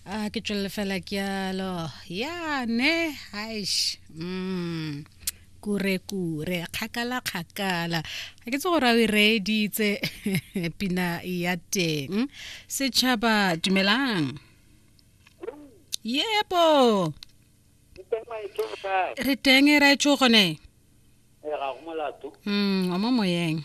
a ke tswelele fela ke yalo ya ne haish mm kure kure kgakala kgakala ga ke tse gore a o e reeditse pina ya teng setšhaba dumelang yebo re teng e raetso gone mm wa mo moyeng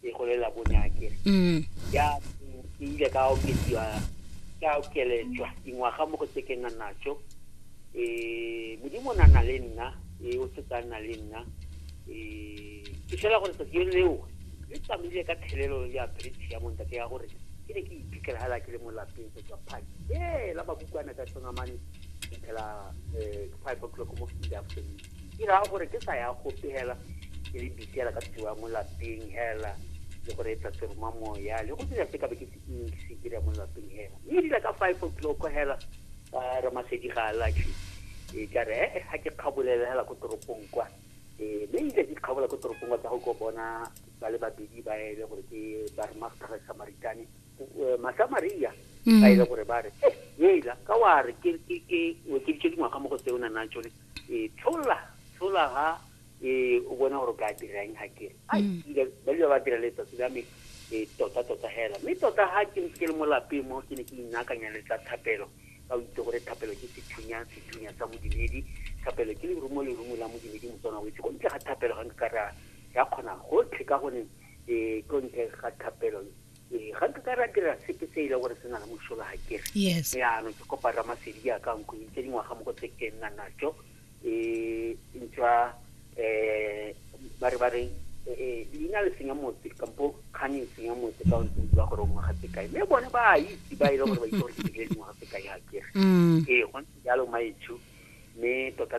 ke go lela bonya ke mm ya ke ile ka okediwa ka okeletswa dingwaga mo go tse ke nna natso eh modimo na na le nna e o se tsana le nna eh ke fela gore tsatsi leo le tsamaile ka thelelo ya bridge ya monta ke ya gore ke ne ke iphitlhela hala ke le mo lapeng go tswa phaki ee la bakukwana ka tsonga mane phela eh five o'clock mo in the afternoon ke raya gore ke sa ya gope hela ke le bitela ka tsiwa mo lapeng hela le go reetsa seroma moya le go dira se ka be ke se ntsi ke dira mo lapeng hela mme e dira ka five o'clock hela ba re masedi ga a latlhe e ka re ee ga ke kgabolela hela ko toropong kwa ee mme ile ke kgabola ko toropong kwa tsa go ko bona ba le babedi ba ele gore ke ba re master samaritane masamaria ba ile gore ba re ee ela ka wa re ke ke ke o ke dingwaga mo go tse o na nang tsone e tlola tlola ha e o bona gore ka dira eng ha ke a dira mm. ba dira ba dira letsatsi la me e tota tota hela mme tota ha ke ntse ke le mo lapeng mo ke ne ke inakanya le tsa thapelo ka o itse gore thapelo ke sethunya sethunya sa modimedi thapelo ke lerumo lerumo la modimedi motswana o itse ko ntle ga thapelo ga nka ka ra ya kgona gotlhe ka gone e ko ntle ga thapelo ee ga nka ka ra dira sepe se e le gore se na le mosola ga kere yes yaanong ke kopa ramasedi jaaka nkhwedi tse dingwaga mo go tse ke nna najo um ntswa um ba re ba re eh, leina le senya motse kampo kgang e senya motse ka ntse ba gore o ngwaga tse kae mme bone ba a itse ba e le gore ba itse gore ke dirile dingwaga tse kae ga kere mm. ee go ntse jalo maetsho mme tota